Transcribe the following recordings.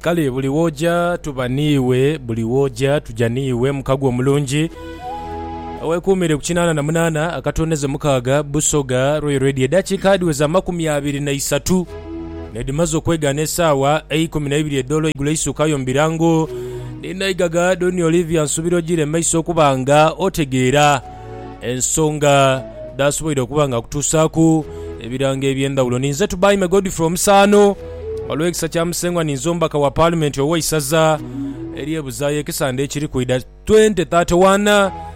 Kale buli w'oja tuba n'iwe, buli w'oja tuja n'iwe mukago omulungi. Weekuumire ku kinaana na munaana akatonezo mukaaga Busoga Royal Radio. Edhakiika dhiweza amakumi abiri na isatu n'edhimaze okwegaana esaawa eikumi na ibiri edh'olweigulo eisukayo mu birango. Ni naigagha Doni Olivia nsuubira ojiire mu maiso okuba nga otegeera ensonga dh'asoboire okuba nga akutuusaaku ebirango eby'endhawulo. Ninze Tubaime Godfrey Omusaano, olw'ekisa kya Musengwa ninze omubaka wa Paalimenti ow'eisaza ery'e Buzaayo ekisande ekiri kwidha 2031.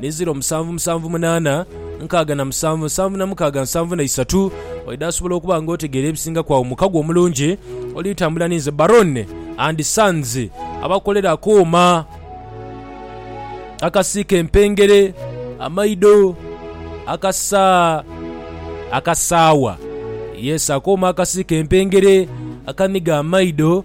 ni ziro musanvu musanvu munaana nkaaga na musanvu nsanvu na mukaaga nsanvu na isatu. Oidha asobola okuba nga otegeera ebisingaku agho mukago omulungi oli tambula ni nze Baron and Sons abakolera akooma akasiika empengere, amaido, akasa akasaawa. Yes akooma akasiika empengere, akaniga amaido.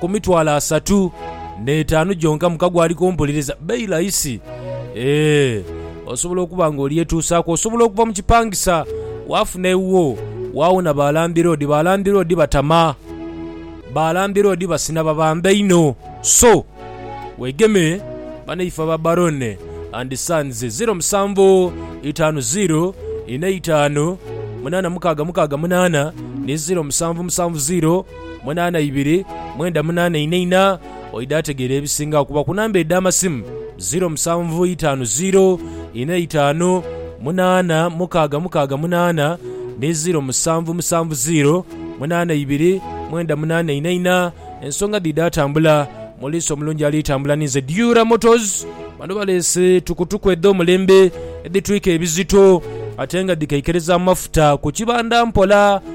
ku mitwalo asatu n'etaanu gyonka muka gwe ali kumpuliriza, bailo aisi. Eeh, osobola okuba nga olyetuusaaku. Osobola okuva mu kipangisa waafuna ewuwo, waawona ba landiroodi. Ba landiroodi batama. Ba landiroodi basina babamba inho. So, wegeme banaife aba Barone and Sons, ziro musanvu itaanu ziro inha itaanu munaana mukaaga mukaaga munaana ni ziro musanvu musanvu ziro. munaana ibiri, mwenda munaana ina ina, oidha ategeera ebisinga okuba ku namba edh'amasimu, ziiro musanvu itaanu ziiro, ina itaanu, munaana mukaaga mukaaga munaana ni ziiro musanvu musanvu ziiro, munaana ibiri, mwenda munaana ina ina. Ensonga dhidha atambula, Muliisa omulungi ali tambula ni nze Diura Motors. Bano baleese tukutuku edh'omulembe edhitwika ebizito ate nga dhikeikereza amafuta ku kibanda mpola.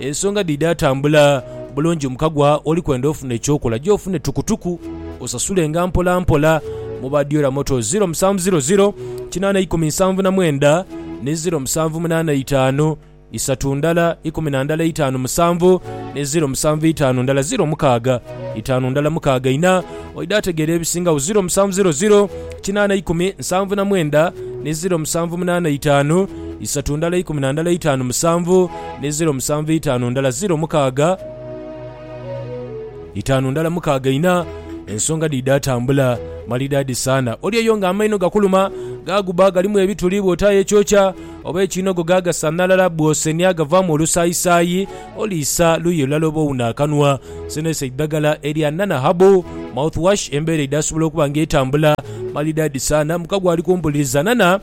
Ensonga dhidhatambula bulungi mukagwa oli kwenda ofuna ekyokola gye ofune tukutuku osasulenga mpola mpola mu ba Diola Motors 0700 81079 ni 0785 isatu ndala ikumi na ndala eitaanu musanvu ni 07 itaanu ndala ziro mukaaga itaanu ndala mukaaga ina oidha ategeera ebisingagho 0700 81079 ni 0785 isatu ndala ikumi na ndala eitaanu musanvu ni ziro musanvu itaanu ndala ziro mukaaga itaanu ndala mukaaga ina, ensonga dhidha tambula malidaadi saana. Oli eyo nga amaino gakuluma, gaaguba galimu ebituli bw'otaayo ekyokya, oba ekiinogo gaagasanhalala bw'osenia gavaamu olusaayisaayi. Oli isa luuyi lulala oba owune akanwa. Sino isa eidhagala erya Nana Herbal Mouthwash. Embeera eidha sobola okuba nga etambula malidaadi saana. Mukago ali kumpuliriza. Nana.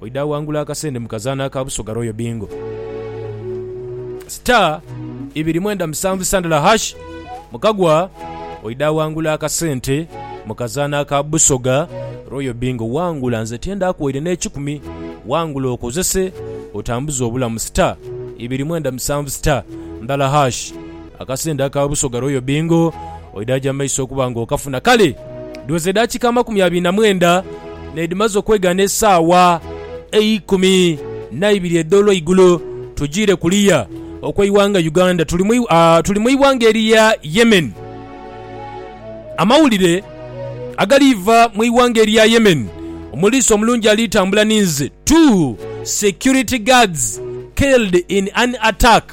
Oidha awangula akasende mu kazaanho aka Busoga Royal Bingo. Star ibiri mwenda musanvu sandala hash, mu kagwa oidha awangula akasente mu kazaanho aka Busoga Royal Bingo. Wangula nze tyendaaku waire n'ekikumi, wangula okozese otambuze obulamu. Star ibiri mwenda musanvu star ndala hash. Akasente aka Busoga Royal Bingo oidaaja mu maiso okuba nga okafuna. Kale duweze edakika amakumi abiri na mwenda n'edhimaze okwegaana esaawa eikumi naibiri edh'olweigulo, tujiire kuliya okw'eighanga Uganda tuli mu ighanga erya Yemen. Amawulire agaliiva mu ighanga erya Yemen, Omuliisa omulungi alitambula ninze, Two security guards killed in an attack.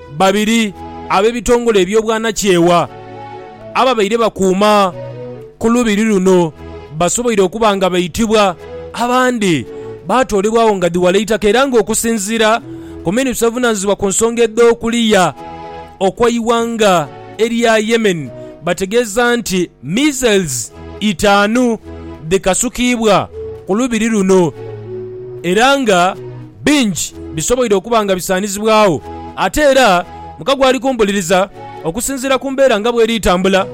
Babiri ab'ebitongole eby'obwanakyewa ababaire bakuuma ku lubiri luno basoboire okuba nga baitibwa, abandi baatoolebwagho nga dhi wala itaka era ng'okusinziira ku minisita ovunaanyizibwa ku nsonga edh'okuliya okw'eighanga erya Yemen bategeeza nti missiles itaanu dhikasukiibwa ku lubiri luno era nga bingi bisoboire okuba nga bisaanizibwagho. Ate era muka gw'ali kumpuliriza, okusinziira ku mbeera nga bw'eri tambula.